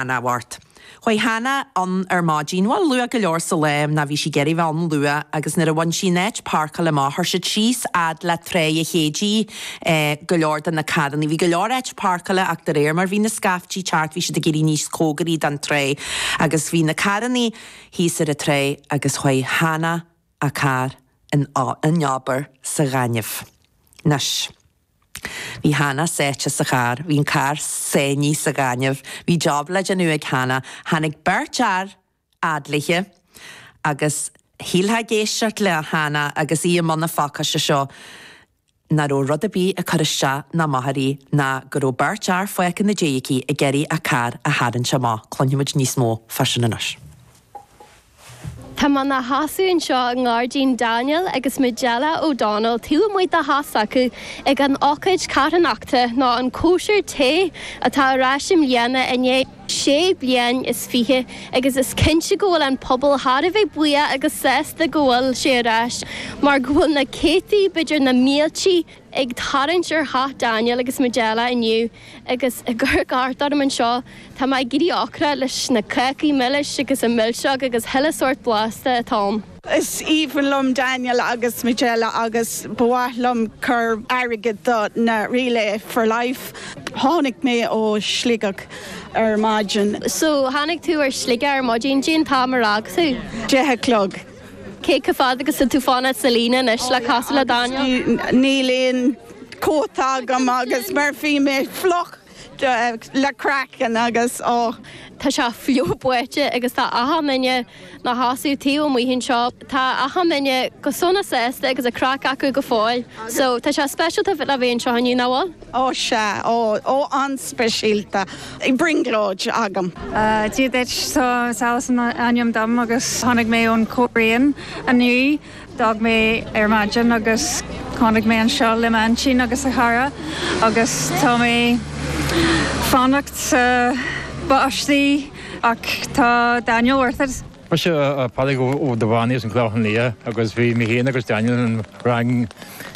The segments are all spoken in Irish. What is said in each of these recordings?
cheana Mháirt. Chuaigh Hannah ann ar maidin, bhuel luath go leor sa lá, nó bhí sí ag iarraidh a bheith ann luath, agus nuair a bhain sí an áit páirceála amach chuir siad síos fhad leis an tráigh an Chéididh, eh, go leor de na carrannaí. Bhí go leor áit páirceála ach de réir mar bhí na scaiftí ag teacht bhí siad ag éirí níos cóngaraí don tráigh agus bhí na carrannaí thíos ar an tráigh agus chuaigh Hannah a carr in, in abar sa ghaineamh. Anois. Bhí Hannah sáite sa charr. Bhí an carr sáinnithe sa ghaineamh. Bhí job le déanamh ag Hannah. Tháinig beirt fhear á tarrtháil agus shílfeá ag éisteacht le Hannah agus í i mbun na faopaise seo nach raibh rud ar bith ag cur isteach ná amach uirthi nó go raibh beirt fhear fágtha ina diaidh aici ag iarraidh a carr a tharraingt amach. Cluinfimid níos mó faoi sin anois. Tá mé i mo sheasamh anseo i ngairdín Daniel agus Majella O Donnell taobh amuigh de theach s'acu ag an ócáid carthanachta nó an chóisir tae atá ar ais i mbliana i ndiaidh sé bliain is fiche agus is cinnte go bhfuil an pobal thar a bheith buíoch agus sásta go bhfuil sé ar ais mar go bhfuil na céadtaí, b'fhéidir na mílte. Ag tarraingt ar theach Daniel agus Majella inniu agus ag amharc thart orm anseo tá mé ag éirí ocrach leis na cácaí milis agus na milseoga agus chuile shórt blasta atá ann. Is aoibhinn liom Daniel agus Majella agus ba mhaith liom cur airgead don Relay for Life. Tháinig mé ó Sligeach ar maidin. So, tháinig tú ó Shligeach ar maidin. Cén t-am ar fhág tú? Deich a chlog. Cé chomh fada agus atá tú ag fanacht sa líne anois le casadh le Daniel? Níl aon cóta agam agus mar bhí mé fliuch go craiceann agus oh. Tá sé fliuch báite agus tá achan duine ina seasamh taobh amuigh anseo, tá achan duine go sona sásta agus an craic acu go fóill. So tá sé speisialta a bheith anseo inniu, nach bhfuil? Ó, sea, ó, ó, an-speisialta, i brionglóid agam. Dia duit, Salis is ainm dom agus tháinig mé ón Choirrín inniu. D'fhág mé ar maidin agus tháinig mé anseo le m'aintín agus a chara agus tá mé ag fanacht sa bháisteach ach tá Daniel worth it. Mise Pádraig Ó Duibheannaigh as an Chlochán Liath agus bhí mé féin agus Daniel sa rang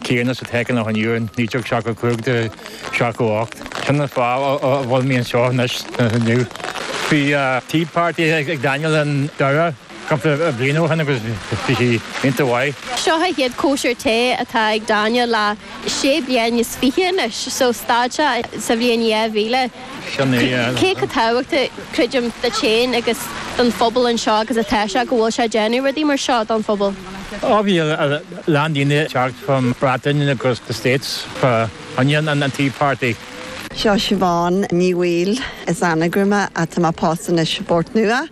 céanna sa Teic i Loch an Iúir in 1975 to 78. Sin an fáth a bhfuil mé anseo anois inniu. Bhí tea party ag Daniel i nDoire cúpla bliain ó shin agus bhí sé iontach maith. Seo an chéad chóisir tae atá ag Daniel le sé bliain is fiche anois so stad sé sa bhliain 2000. Cé chomh tábhachtach, creidim, duit féin agus don phobal anseo agus atá sé go bhfuil sé ag déanamh rudaí mar seo don phobal? Ó bhí a lán daoine ag teacht from Breatain agus the States fá choinne an Tea Party. Seo Siobhán Ní Bhaoill as Anagaire mé, tá mé pósta anois i bPort Nua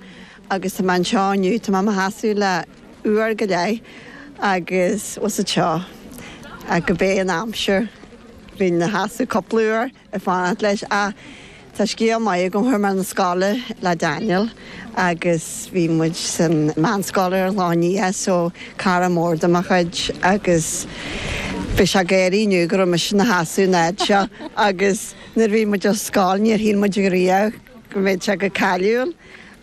agus tá mé anseo inniu, tá mé i mo sheasamh le uair go leith agus bhuel sa teo ach go bé an aimsir bheinn i mo sheasamh cúpla uair. ag fanacht leis ach tá scéal maith agam, chuaigh mé 'na scoile le Daniel agus bhí muid san meánscoil ar an Chlochán Liath so cara mór de mo chuid agus bhí sé ag gáirí inniu go raibh mise i mo sheasamh an fhaid seo agus nuair bhí muid ar scoil níor shíl muid riamh go mbeadh sé chomh cáiliúil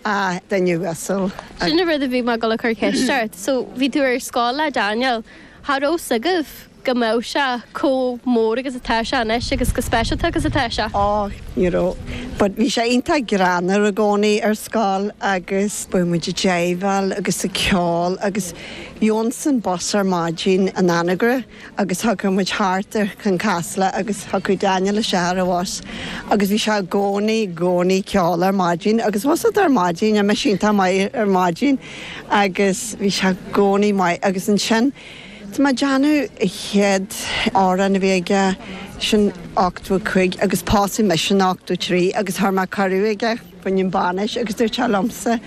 ach duine uasal. Sin an rud a bhí mé dul a chur ceist ort, so bhí tú ar scoil le Daniel, cha raibh fhios agaibh? go mbeadh sé chomh mór agus atá sé anois agus go speisialta agus atá sé. Á, ní raibh. But bhí sé iontach greannmhar i gcónaí ar scoil agus bheadh muid i dteagmháil agus ag ceol agus gheobhainnse an bus ar maidin in Anagaire agus thiocfadh muid thart ar Chionn Caslach agus thiocfadh Daniel isteach ar an bhus agus bhí sé i gcónaí, i gcónaí ag ceol ar maidin agus bhus fhada ar maidin, níl mise iontach maith ar maidin agus bhí sé i gcónaí maith agus ansin. Tá mé ag déanamh an chéad amhrán a bhí aigesean 85 agus pósadh mise in 83 agus chuir mé cuireadh aige fá choinne an bhainis agus dúirt sé liomsa an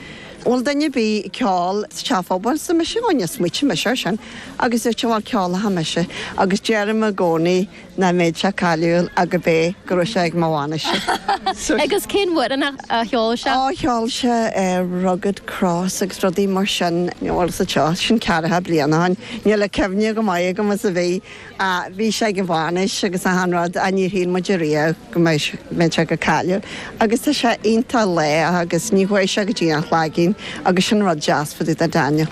bhfuil duine ar bith ag ceol sa teach phobail arsa mise ó níor smaointigh mise air sin agus dúirt sé bhuel ceolfaidh mise agus deirim i gcónaí Nach mbeadh sé cáiliúil ach go bé go raibh sé ag mo bhainis-se. Agus cén t-amhrán a cheol sé? Ó, cheol sé Rugged Cross agus rudaí mar sin. Bhuel, sa seo, sin ceathracha bliain ó shin. Níl an chuimhne chomh maith agam agus a bhí. Ach bhí sé ag an bhainis agus achan rud ach níor shíl muid ariamh go mbeadh, mbeadh sé chomh cáiliúil. Agus tá sé iontach lách agus ní dheachaigh sé go dtína chloigeann agus sin rud deas fá dtaobh de Daniel.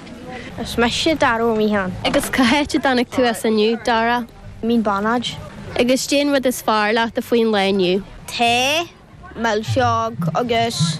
Is mise Dara Ó Mianáin. Agus cá háit a dtáinig tú as inniu, Dara? Mín Beannaid. Agus caidé an rud is fearr leat faoin lá inniu. Tae, milseog agus.